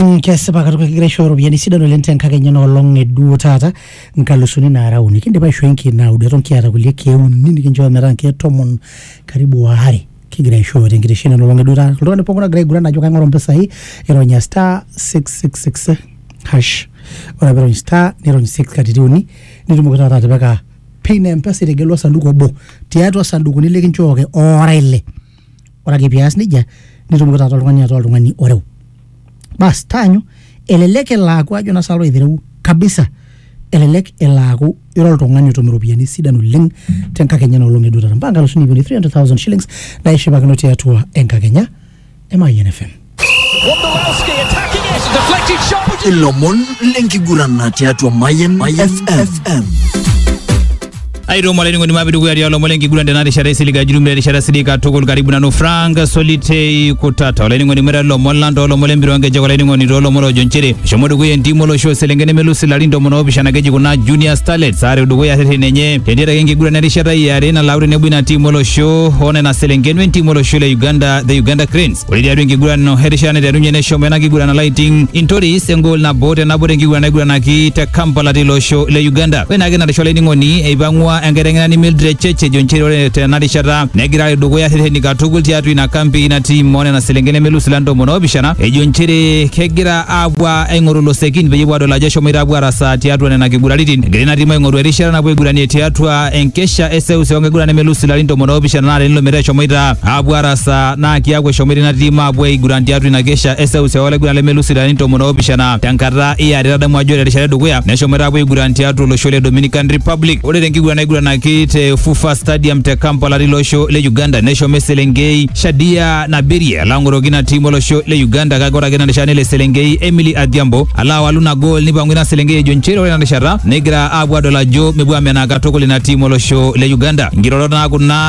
Mm, kesipa katuk ekigira aishooyo iropiyiani sidan oleng tenkakenya enoolong eduo taata nkalusuni naara uni kindipa aishoo inkeek naudo eton kiata kulie keek uni nikinchoo metaa inkeek tomon karibu waare kigira aishooyo tenkitesheni enoolong eduo taata oltung'ani pookin ogira aiguran ajo kaing'oru impisai ironya star 666 hash ore piirony star nirony 6 katitin uni nitumoki taata atipika pin e mpesa itegelua osanduku obo tiatua isandukuni likinchooki oora ile ore ake pias nejia nitumoki taata oltung'ani ataa oltung'ani oreu bas taanyu elelek elo aaku ajo naa salo aitereu kabisa elelek elo aaku ira oltung'ani otum iropiyiani sidan oleng tenkakenya enoolong eduo taata mpaka nkalusuni ip uni 300,000 shillings naishipakino tiatua enkakenya e Mayian FM ilomon lenkiguran tiatua Mayan FM. aitomo olainining'oni mapi dukuya tialo lomon lenkiguran tena rishata isiliga jumla erishata sidii katukul karibu nanu frank solitei kutata olainining'oni mweta lomon lang toolomon lempira onkejek olainining'oni toolomon oojo nchere eshomo dukuya entim olosho oselenge nemelusi ilarin tomon oopishana keji kuna junior starlets aare dukuya rreten enye tendiata ake enkiguran erishata iare nalau tenebo ina tim olosho onena selenken wentim olosho le uganda the uganda cranes Ore tiatua enkiguran erishata naiterunye neshomo ena kiguran alaiting intoris engol nabo te nabo tenkiguran naiguranaki te Kampala tilo osho le Uganda. Ore naake narisho olainining'oni eipang'ua enkiteng'enani Mildred Cheche ejo nchere ore tena rishata negira alo dukuya rreteni katukul tiatua ina kampi ina tiim onena selenken nemelus ila ntomoni oopishana ejo nchere kegira aapuo aing'oru ilosekin peyie epuo adol ajo eshomoita apuo arasaa tiatua nena kiguraritin. Egira ina tiim aing'oru erishata napuo aiguranie tiatua enkesha eseuseu onkiguran nemelus ilarin tomon oopishana naa tenilo metaa eshomoita apuo arasaa naa kiaku eshomoita ina tim aapuo aiguran tiatua ina kesha e seuseu olaiguran lemelus ilarin tomon oopishana tenkata e are. Tadamu ajo ore terishata edukuya neshomoita aapuo aiguran tiatua olosho le Dominican Republic. Ore tenkiguran naiguranaki te FUFA Stadium te Kampala tilo osho le Uganda neshomo eselenkei Shadia Nabirie alo ang'oroki ina tim olosho le Uganda kake ore ake ina rishata nelo eselenkei Emily Adhiambo alo awalu ina gool neipang'u ina selenkei ejo nchere ore ina rishata negira aapuo aadol ajo mepuo amenaa katukul ina tim olosho le Uganda. Nkirorot naa kuna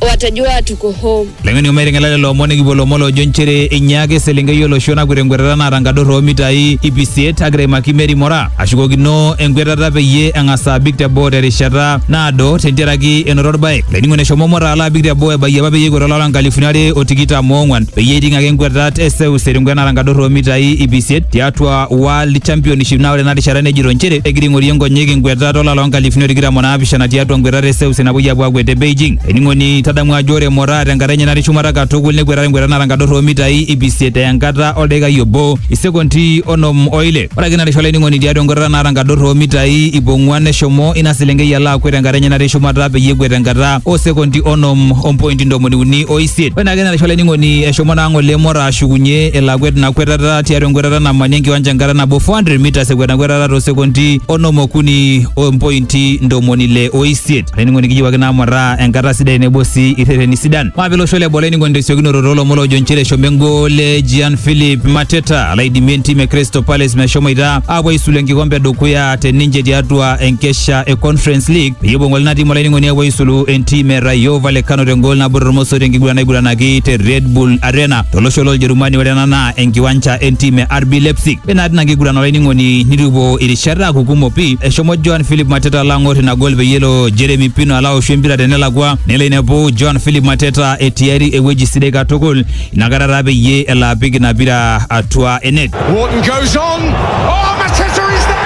watajua tuko home. Leng'eni ometing'ela lelo omon nikipuo lomon loojo nchere einyaaka eselenkei olosho nakwet enkwetata naata nkador oomitai ip isiet agira aimaki Mary Mora ashukokino enkwetata peyie eng'as abik teboo terishata naado tentiaraki enoto orbae. Lainingo neshomo Mora alo abik teboo ebayie apa peyie ekwet olapa nkalifuni are o tikitam oong'wan peyie eiting ake nkwetat e seuseu tenkwet naata nkador oomitai ip isiet tiatua World Championship naa ore ena rishata nejito nchere egira aing'orie nkonyek enkwetata olapa loo nkalifuni o tikitam o naapishana tiatua nkwetata e seuseu napuoi apuo akwet te Beijing. Ening'oni, tadamu ajo ore Moraa tenkata enye natii shumata katukul nekweta te nkwetata nara enkadorro oo mitai ip isiet eya enkata oldakikai obo isekondi onom o ile. Ore ake ina rishata olainining'oni tiatua enkwetata nara enkadorro oo mitai ip ong'uan neshomo ina selenkei alo akwet tenkata enye natii shumata peyie ekwet tenkata oo sekondi onom o mpointi ntomoni uni o isiet. Ore naa ake ina rishata olainining'oni eshomo naa ng'ole Moraa ashukunye elo akwet ina kwetata ekwetata tiatua enkwetata namani enkiwanja enkata nabo 400 meters ekwet enkwetata too sekondi onom okuni o mpointi ntomoni ile o isiet olainining'oni kiyiewaki naa mataa enkata sidai tenebo sii irreteni sidan maape losho le boo olainining'oni tesiokinoto toolomon loojo nchere eshomo engol e Gian Philip Mateta alo aidimie entim e Crystal Palace meshomoita aapuo aisulu enkikompe edukuya te ninche tiatua enkesha e Conference League peyie epuo ng'ole ina tim olainining'oni apuo aisulu entim e Rayo Vallecano tengol nabo tormosor tenkiguran naiguranaki te Red Bull Arena tolosho loljerumani ore ena naa enkiwanja entim e RB Leipzig. Ore naa tina kiguran olainining'oni nitupuo irishat aaku kumok pii. Eshomo Joan Philip Mateta alo ang'or ina gol peyie elo Jeremy Pino alo aoshu empira tenelakua nelo ainepu Joan Philip Mateta etiari ewueji sidai katukul inakata taa peyie elo apik ina pira atua enet. Wharton goes on. Oh, Mateta is there!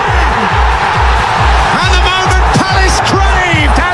And the moment Palace craved has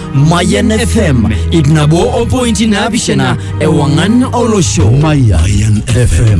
Mayan FM ip nabo opointi naapishana ewang'an olosho. Mayan FM.